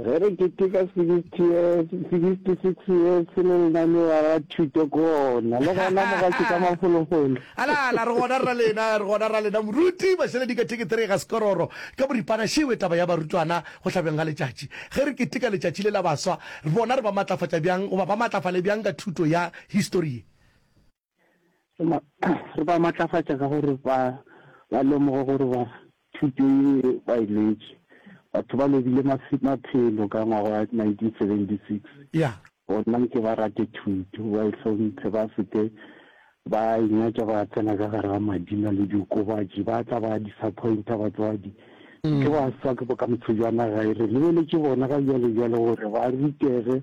Ge re keteka 60 years, 66 years se le lena le ba ba thuto kona. Le gona mo ga tšeka mafolofolo. Ala, ala, re gona ra lena, re gona ra lena. Moruti, bašeledi ka thekethere ga sekororo, ka boripana šewe taba ya barutwana go hlabjeng ga letšatši. Ge re keteka letšatši le la baswa, re bona re ba matlafatša bjang goba ba matlafale bjang ka thuto ya histori ye. Re ba matlafatša ka gore ba ba lemoge gore ba thuto ye ba e letše. Batho ba lobile maphelo ka ngwaga wa 1976 bona nke ba rate thuto, ba e hlomphe, ba se ke ba inyatša ba tsena ka gare ga madina le diokobatši. Ba tla ba disappointa batswadi, nke ba swa ke bokamoso bja naga e. Re lebeletše bona ga bjale bjale gore ba rutege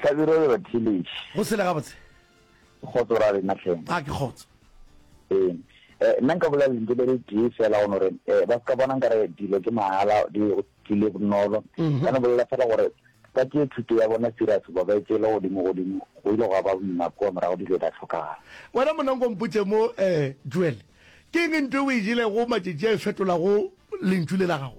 Hlabirwa le Batheletši. Go sele gabotse. Kgotso ra lena tlhe. A ke kgotso. Ee. Eh nna nka bolela lentho le le tee fela go gore eh ba ska bona nkare dilo ke mahala di tlile bonolo. Mhm. Ka no bolela fela gore ba tšee thuto ya bona serious ba ba e tšeele godimo godimo go ile go ba boima kwa morago di ile di a tlhokagala. Wena monanko mpotše mo eh Joel ke eng nto o e jelego matšatši a e fetolago lentšu le la gago?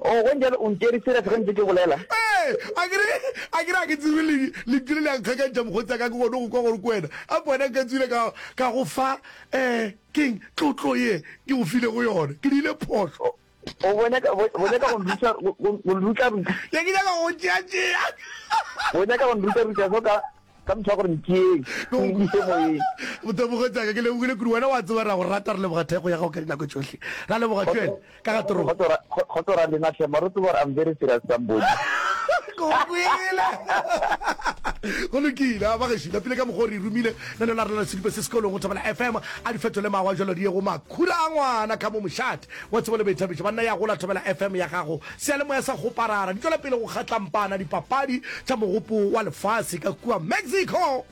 Oo, go ntšjalo o ntšere serious ge ntse ke bolela? Ee, akere, akere ga ke tsebe le, le tlile le a nkgakantšha mokgotsi a ka, ke kgone go kwa gore ke wena. A ko wena nka tswile ka, ka go fa, ee, ke'ng, tlotlo ye ke go filego yona. Ke dirile phošo. O, bo nyaka, bo, bo nyaka go nruta, go, go, go nrutaruta. Ne ke nyaka go go tšeatšea. Bo nyaka go nrutaruta so ka. Ka mehla gore ntšeeng, o nkise moyeng. Motemogo tšaka, ke lebogile kudu. Wena o a tseba re a go rata, re leboga thekgo ya gago ka dinako tšohle. Ra leboga Joel ka ga toro. Kgotso ra, kgotso ra lena hle, mara o tseba gore I'm very serious somebody. Ke go kwele. Go lokile, a ba gešo. Lapile ka mokgwa o re romile na le la rena la sedupa se sekolong go Thobela FM. A di fetole mawa jalo di ye go makhura a ngwana ka mo mošate. Wa tseba le baithabiša ba nna ya gola Thobela FM ya gago. Seyalemoya sa Goparara di tšwela pele go kgatlampana dipapadi tša mogopo wa lefase ka kua Mexico.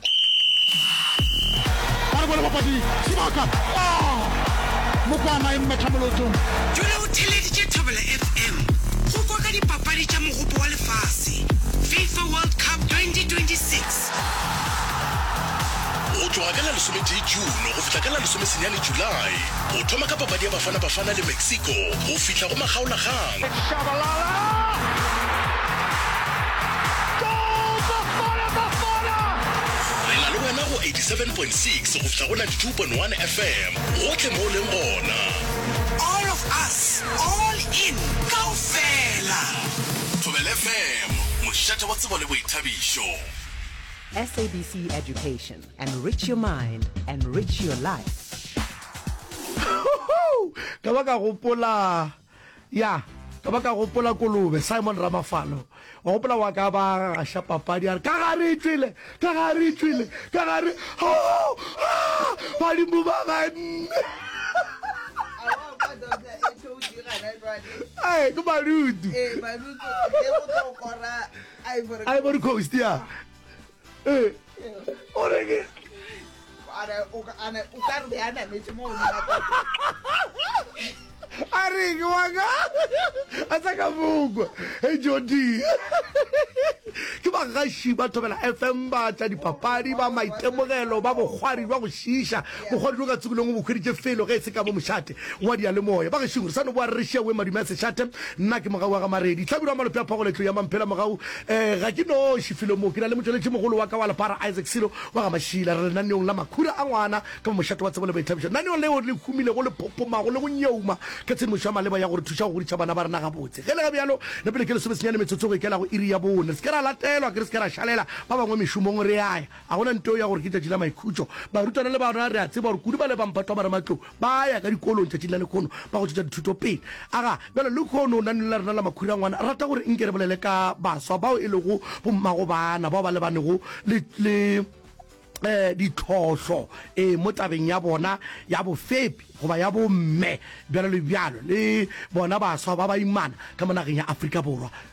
Jwale o theeleditše Thobela FM go kwa ka dipapadi tša mogopo wa lefase, Fifa World Cup 2026. Go tloga ka la lesometee June go fihla ka la lesomesenyane July, go thoma ka papadi ya Bafana Bafana le Mexico go fihla go makgaolakgang, It's Shabalala! Goal Bafana Bafana! Re na le wena go 87.6 go fihla go 92.1 FM gohle mo o leng gona. All of us, all in, kaofela! Thobela FM, mošate wa tsebo le boithabišo. SABC Education. Enrich your mind, enrich your life. ka ba ka gopola ya ka ba ka gopola kolobe simon ramafalo wa gopola wa ka ba gaša papadi a re ka gare e tswile ka gare e tswile ka gare badimo ba ganne ke barutu Ivory Coast, ya. Eh, o re ke. Ana, o ka, ana, o ka re be a nametše mo o a re ke wa ka a sa ka mokwa e jodi ke bagaši ba thobela fm ba tša dipapadi ba maitemogelo ba bokgwari jwa go šiša Mokgwa dilo ka tsebelong o bo hweditše felo ge e se ka mo mošate wa diyalemoya. Bagešong, re sa no boa re re šia Wee Madume a Sešate, nna ke mogau wa ga Maredi, Hlabirwa wa Malope a Phogola etlong ya Mamphela mogau. Um ga ke noši felong mo, ke na le motšweletšimogolo wa ka wa lepara Isaac Silo wa ga Mašila. Re lenaneong la Makhura a ngwana ka mo mošate wa tsebo le boithabišo, lenaneong leo le humilego, le phopomago le go nyeuma ka tshedimošo ya maleba ya go re thuša go godiša bana ba rena gabotse. Ge le ge bjalo, le pele ke lesomesenyane metsotso go ikela go iri ya bone, re se ke ra latelwa ke re se ke ra šalela ba bangwe mešomong re ya ya. Ga go na ntweo ya gore ke tšatši la maikhutšo. Barutwana le barna re a tseba gore kudu ba le ba mphatwa ba ramatlou ba a ya ka dikolong tšatšing la lekhono ba go tšwetša dithuto pele. Aga bjalo lekhono naneng la rena la makhurangwana rata gore nke re bolele ka baswa bao e lego bommagobana bao ba lebanego le le ditlhohlo e mo tabeng ya bona ya bofepi goba ya bomme bjalo le bjalo le bona baswa ba baimana ka mo nageng ya Afrika Borwa.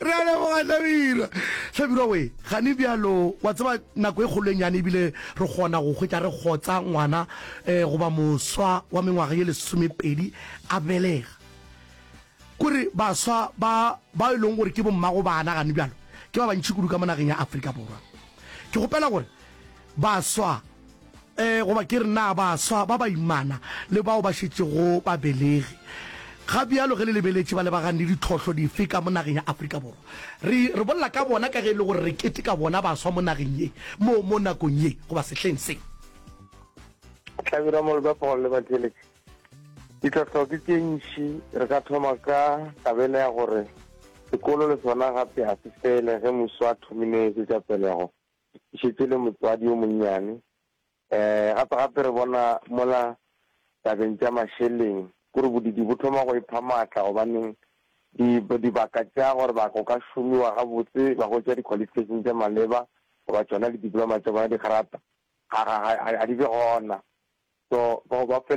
re a leboga hlabirwa hlabirwa we gane bjalo wa tseba nako e kgolo e nyane ebile re kgona go hwetša re kgotsa ngwana um goba moswa wa mengwaga ye lesomepedi a belega kore baswa ba ba e leng gore ke bommago bana gane bjalo ke ba bantšhi kudu ka mo nageng ya aforika borwa ke gopela gore baswa E, goba ke re na baswa ba baimana le bao ba šetšego babelegi ga bjalo ge le lebeletše ba lebagane le ditlhohlo dife ka mo nageng ya Afrika Borwa? Re, re bolela ka bona ka ge e le gore re keteka bona baswa mo nageng ye, mo, mo nakong ye, goba sehleng se. Hlabirwa Molba Paul le batšweletši, ditlhohlo ke tše ntši. Re ka thoma ka kabelo ya gore sekolo le sona gape ga se fele ge muswa a thomile tše tša pelego. e šetše e le motswadi yo monnyane. Um gape-gape re bona mola tabeng tša mašeleng kore bodidi bo thoma go epha maatla gobaneng di, dibaka tša gore ba go ka šomiwa gabotse ba hwetša di-qualification tša maleba goba tšona le diploma tša bona di grata ga, ga, ga, ga di be gona. So bao ba fele